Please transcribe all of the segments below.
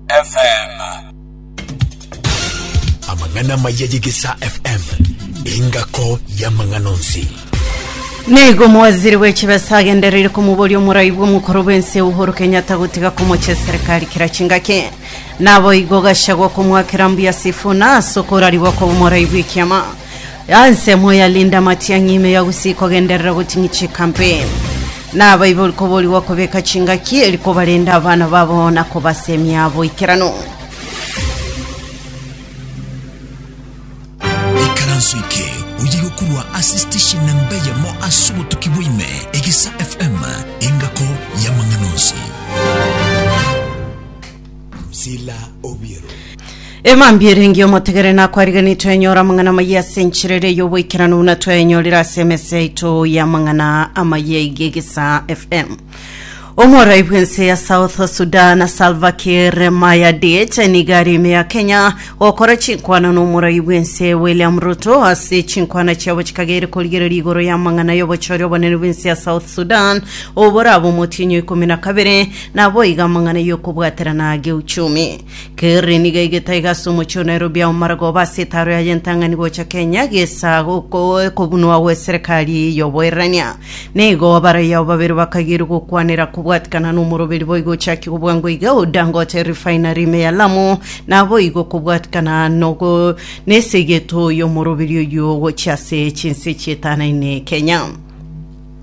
FM. Amang'ana amaya y'Egesaa FM engako y'amang'ana onsi. Nigo omowaziri w'echibesa agendereire komoboria omorai bw'omokoro bw'ense Uhuru Kenyatta gotiga komochia eserikari kera chingaki. Nabo igo Gachagua komwakera mbuya Sifuna ase okorarigwa koba omorai bw'ekiama. Ensemo ya Linda Matiang'i ime ya gusii kogenderera goting'i chikampeni. Nabaibori koborigwa kobeka chingaki eri kobarenda abana babo na kobasemia boikeranu. Ikaranso eke oye gokurwa ase station namba eyemo ase obotuki bwaime, Egesa FM, engako y'amang'ana onsi. Sila obiero. Emambia ere engiya omotegere nakwariganire twenyora amang'ana amayia ase enchera ere y'oboikeranu buna twayenyorire ase emesa yaito y'amang'ana amayia iga egesa fm omorai bw'ense ya south sudan salva kiir mayadit niga ari ime ya kenya gokora chinkwana n'omorai bw'ense william ruto ase chinkwana chiabo chikagere korigereria igoro y'amang'ana y'obochori obonene bw'ense ya south sudan oboraba omotienyi o ikomi na kabere Naboigo amang'ana y'okobwaterana a geuchumi. Kerri nigo egete iga ase omochie o Nairobi ao maragoba ase etaaro yaye entang'ani gocha Kenya gesa kobunwa gw'eserekari y'oboirania. Nigo abarai ao babere bakagirwa gokwanera kobwatikana n'omoroberi boigo ochakia kobwangwa iga o Dangote Refinery ime ya Lamu naboigo kobwatikana n'esegeto y'omoroberi oyio gochia ase chinse chietano ime Kenya.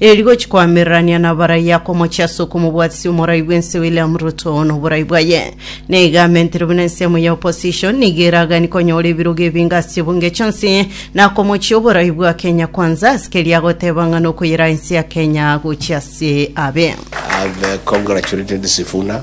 Ere rigochi koamererania na abarai akomochia ase okomobwatisia omorai bw'ense William Ruto noborai bwaye. Naiga amentere buna ensemo ya opposition nigo eragani konyora ebirogo ebinge ase chibunge chionsi na komochia oborai bwa Kenya Kwanza ase keria agoteba ng'a nokoyeraa ense ya Kenya gochia ase abe. I have uh, congratulated Sifuna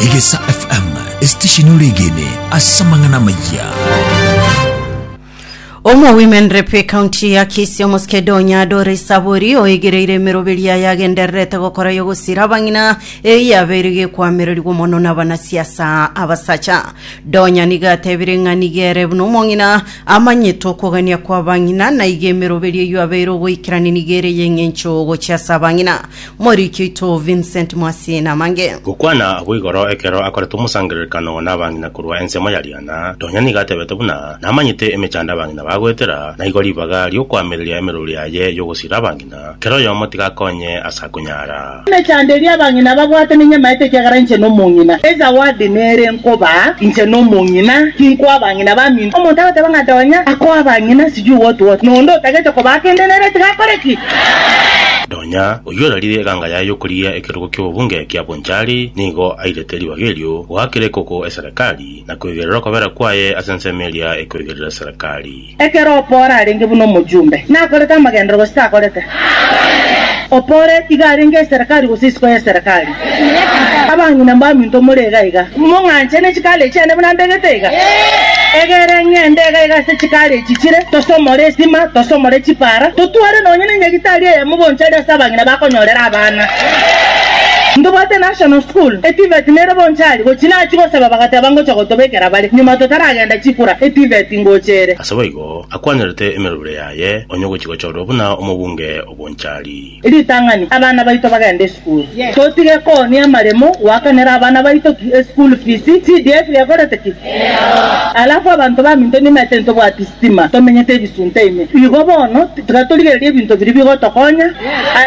Egesa FM, esitesheni oregene ase amang'ana amayia. Omo Women Rep County ya Kisii Omoskedonya Dore Saburi oigereire emeroberi yaye agendererete gokora yogosira abang'ina eye yabeire gekwamererigwa mono n'abanasiasa abasacha. Donya niga atebire ng'a niga ere buna omong'ina amanyete okogania kw'abang'ina na iga emeroberi eyio abeire ogoikerania niga ere y'eng'encho gochia ase abang'ina. Moriki oito Vincent Mwasi namange. Gokwana agwo igoro ekero akoretwe omosangererekano nabang'ina korwa ensemo ya riana, nonya nigo atebete buna, Namanyete emechando abang'ina bagoetera, na igo ribaga ri'okoamereria emeruru yaye y'ogosiira abang'ina, kera oyomo tiga akonye ase akonyara. Emechando eria abang'ina babwate ninyamaete ekiagera inche nomong'ina. Ezawadi nere nkobaa inche nomong'ina, tinkoa abang'ina baminto. Omonto agoteba ng'a nonya akoa abang'ina sijui what what, na onde otagete kobaa kende nere tiga akore ki? Nonya oyio orarire eganga yaye y'okorigia ekerogo ki'obobunge kia Bonchari nigo airete ribaga erio goakera ekoko eserekari, na kweigerera okobera kwaye ase ensemo eria ekoigerera eserekari. Ekero Opora arenge buna omochumbe, nakorete amagenderero gose takorete? Opora iga arenge eserekari gose isiko y'eserekari? Abang'ina mbaminto more iga iga, mong'anche ne chikaare chiane buna mbegete iga. Egere ng'ende iga iga ase chikaare echi chire, tosomore esima, tosomore chipara, totware nonya nenyagitari eyemo bonchari ase abang'ina bakonyorera abana. Ntobwate National School, e TVET nere bonchari, gochi nachia gosaba bagateba ngocha gotobekera bare, nyuma totaragenda chikura, e TVET ingocha ere. Ase boigo, akwanyorete emerobire yaye, onye ogochi gochorwa buna omobunge obonchari. Ritang'ani, Abana baito bagende esukuru. Totige koonia amaremo goakanera abana baito ki eschool fees. CDF gekorete ki? Alafu abanto baminto nimete ntobwati sitima, tomenyete ebisunte ime. Igo bono tiga torigererie ebinto biria bigotokonya.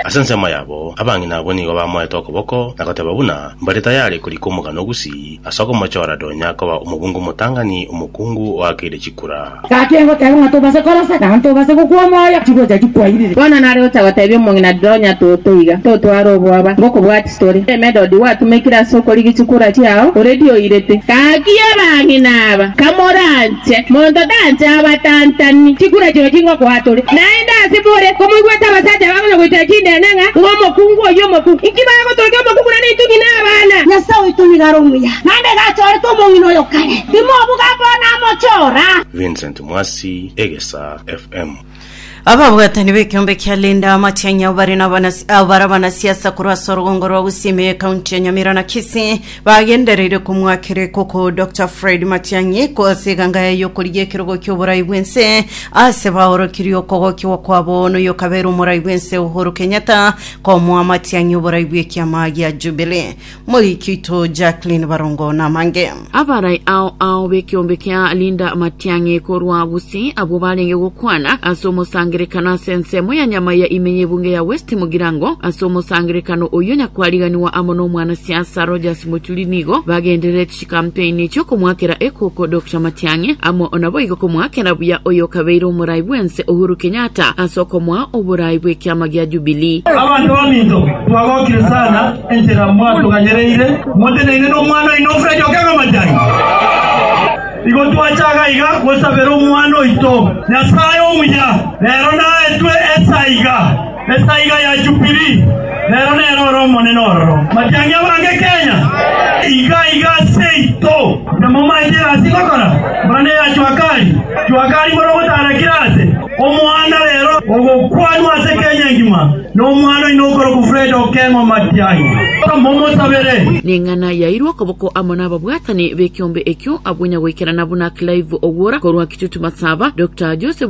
Ase ensemo yabo, abang'ina abwo nigo bamoete okoboko na goteba buna mbare tayari korika omogano o Gusii. Ase okomochora Donya koba omobunga omotang'ani, omokungu oakeire chikura. Gaki egoteba ng'a tobase korosa, naende tobase gokwa omoyo, chigocha chikwairire. Bono nare gocha gotebia omong'ina Donya toto iga, totware obwoba, ngokobwati tore. Emedodi gwatumekire ase okorigia chikura chiao, oredi oirete. Gaki abang'ina aba, kamoranche. Inche monto tancha abatantani chikura chino chingokoa tore, naende ase more komoigwete abasacha bagonya goitera chinene ng'a ng'omokungu oyio omokungu. Inki bagotokia omokungu nane intwe ng'ina abana? Nyasae oito nigo are omuya, naende iga achorete omong'ina oyo kare, timobuga bono amochora. Vincent Mwasi, Egesaa FM. Ababwatani b'ekeombe kia Linda Matiang'i abo bare n'abanas- abo bare abanasiasa korwa ase orogongo rwa Gusii me ekaunti ya Nyamira na Kisii bagendereire komwakera ekoko Dr Fred Matiang'i ko ase eganga yaye y'okorigia ekerogo ki'oborai bw'ense aase baorokirie okogokigwa kwabo noyo okabeire omorai bw'ense Uhuru Kenyatta komoa Matiang'i oborai bw'ekiama gia Jubilee Moiki oito Jacqueline Barongo namange. Abarai ao ao b'ekeombe kia Linda Matiang'i korwa Gusii abwo barenge gokwana ase omosangerekano ase ensemo ya nyama ya ime y'ebunge ya West Mugirango. Ase omosangerekano oyio nyakwariganiwa amo n'omwanasiasa Rogers Mochuri nigo bagenderereti. Kampeini chi'okomwakera ekoko Dokta Matiang'i amo naboigo komwakera buya oyokabeire omorai bwense Uhuru Kenyatta ase okomoa oborai bw'ekiama gia Jubilee. Abanto baminto twagokire sana enchera mwatuganyereire moteneine nomwana oino Fred Okengo Matiang'i. Igo twachaka iga gosabera omwana oito Nyasae omuya rero naetwe esaiga. Esaiga ya Jubili, rero nere ore omonene ororo. Matiang'i abange Kenya, iga iga seito. Namomaete egasi ngokora, buna neya Juakali. Juakali bore ogotarakire aase, omoanda rero ogokwanwa ase Kenya engima, na omwana oino okorokwa Fred Okeng'o Matiang'i. Momosabere. Neng'ana yairwe okoboko amo nababwatani bekiombe ekio abwo nyagoikerana buna Clive Ogwora korwa Kitutu Matsaba, Doctor Joseph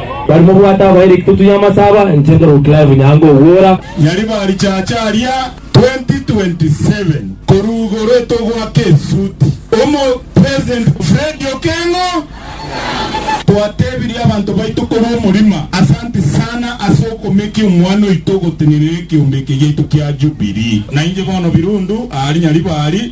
Bari mobwate abairiki totunya amasaba inche nkorwa Clive Nyango Ogwora. Nyariba richache aria 2027 korwa igoro etogoaka esuti omo president Fred Okengo twatebirie abanto baito korwa omorima asanti sana ase okomekia omwana oito ogotenerera ekeombe eke giaito kia jubilee nainche bono birundu aari nyariba aari.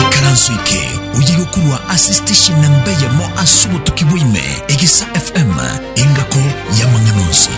Ikaranso eke oyiga okorwa ase station namba eyemo ase obotuki bwaime, Egesa FM, engako y'amang'ana onsi.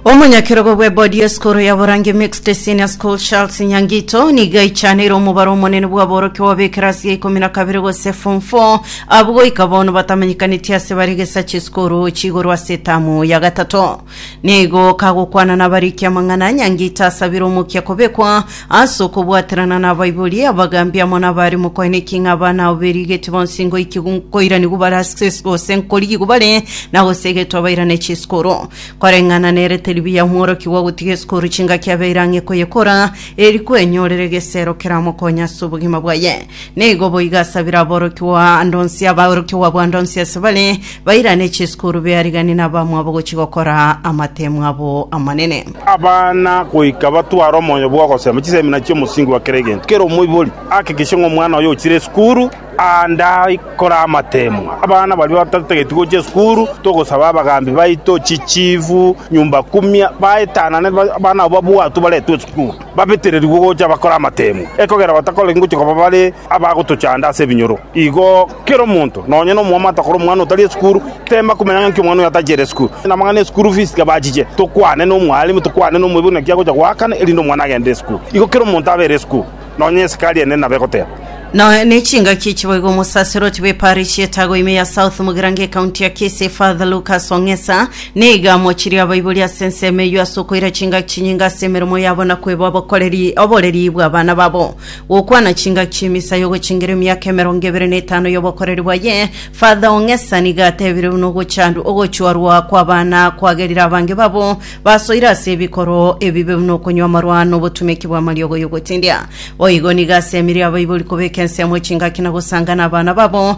Omonyakerogo bw'ebodi y'esukuru ya Borange Mixed Senior School Charles Nyangito nigo aichaneire omobaro omonene bw'aborokia b'ab'ekerasi ya ikomi na kabere gose form 4 abwo goika bono batamanyekanetie ase bare gesacha esukuru chigoro ase etamu ya gatato. Nigo kagokwana nabarikia amang'ana, Nyangita asabire omokia kobekwa ase okobwaterana nabaibori, abagambi amo nabare mokoene ki ng'a abana abo berigetie bonsi ngoiki gu- nkoiranigwe bare ase isiko gose nkorigigwe bare na gose egetwa bairane chisikuru. Koreng'ana nerete ribuya omworokia gwa gotiga esikuru chingaki abeire ang'e koyekora, eri kwenyorera egesero keramokonye ase obogima bwaye. Nigo boigo ase biraborokigwa ande onsi abaorokigwa bw'ande onsi ase bare bairane chisukuru beariganie nabamwabo gochia gokora amatemu abo amanene. Abana goika batware omoyo bw'ogosema chisemina chi'omosingi bwa kera egento. Kera omoibori ahakikishe ng'a omwana oye ochire esukuru aande aikore amatemu. Abana baria batatageti gochia esukuru, togosaba abagambi baito, chichifu, nyumba kumia baetanane abana abo babwatwe baretwe esukuru. babetererigwe gocha bakore amateemwa, ekogera batakoreti ngochia koba bare abagotochanda ase ebinyoro. Igo kera omonto, nonya nomwamate akore omwana otari esukuru, teema komenya ng'a inki omwana oyo atachere esukuru. Namang'ana ya esukuru fees tiga bachiche, tokwane nomwalimu, tokwane nomoibori naki agocha goakana erinde omwana agende esukuru. Igo kera omonto abe ere esukuru, nonya esikari ene nabo egoteeba. Noe nechingaki chiboigo Omosaserdoti bw'eparish y'Etago ime ya South Mugirango Ekaunti ya Kisii Father Lucas Ong'esa, Nigo mochirie abaibori ase ensemo eyio ase okoira chingaki chinyinge ase emeremo yabo na kweba obokoreri oboreri bw'abana babo. Gokwana chingaki chi'emisa y'ogochingera emiaka emerongo ebere na etano y'obokoreri bwaye, Father Ong'esa nigo atebire buna ogochandwa ogochorwa kw'abana kwagerire abange babo basoire ase ebikoro ebibe buna okonywa amarwa na obotumeki bw'amariogo y'ogotindia. Boigo nigo asemerie abaibori kobeka ensemo chingaki na gosangana abana babo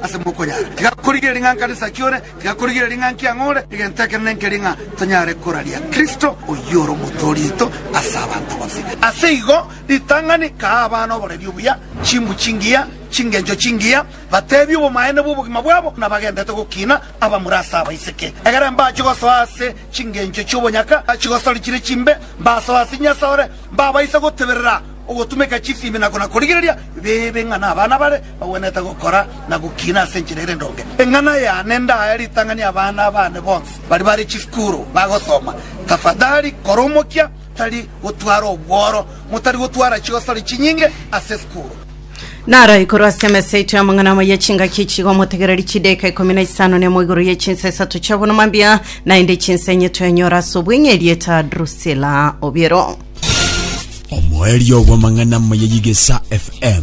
Ase mokonyara, tiga korigereria ng'a nkare isaki ore, tiga korigereria ng'a nki ang'o ore, egento ekenene nkeria ng'a tonyare koraria Kristo, oyio ore omotwe orieto ase abanto bonsi. Ase igo ritang'ani kaa abana oboreri obuya, chimbu chingiya, chingencho chingiya, bateebie obomaene bw'obogima bwabo buna bagendete gokiina abamura ase abaiseke. Egere mbache gosoa ase chingencho chi'obonyaka chigosori chire chimbe, mbasoe ase Nyasae ore mbabaise goteberera ogotumeka chisiimi na kona korigereria bibe ng'a nabana bare Ogwenerete gokora na gokina ase enchera ere endonge. Eng'ana yane ndaye ritang'ani abana bane bonsi baria bare chisukuru bagosoma. Tafadhali kora omokia tari gotwara obworo, motari gotwara chigosori chinyinge ase esukuru. Naro igoro ase emesa yaito y'amang'ana amo ye chingaki echi iga omotegereri chidaeka ikomi na isano na imo igoro ye chinsa isato chi'obonoma mbia, naende chinsa enye twenyora ase obweng'e erieta Drusila Obiero. Omoerio bw'amang'ana amo ye Yigesa FM.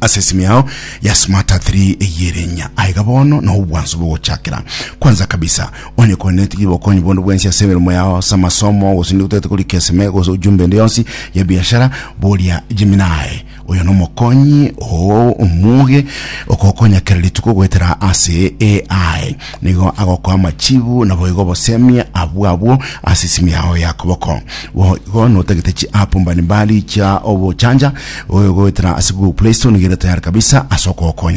Ase esimi yao ya smart a 3 eyerenya aiga bono na obwansu bogochakera. Kwanza kabisa, onye kore netigi bokonyi bonde bwensi ase emeremo yao, ase amasomo, gose ninde gotagete korika eseme gose ojumbe ende yonsi ya biashara, boria Gemini. Oyo nomokonyi oo omoge okogokonya kera rituko goetera ase AI. nigo agokoa amachibu naboigo obosemia abwo abwo ase esimi yao ya koboko. Boigo notagete chiapu mbalimbali chia obochancha goetera ase Google Play Store nigo ere tayari kabisa ase okogokonya.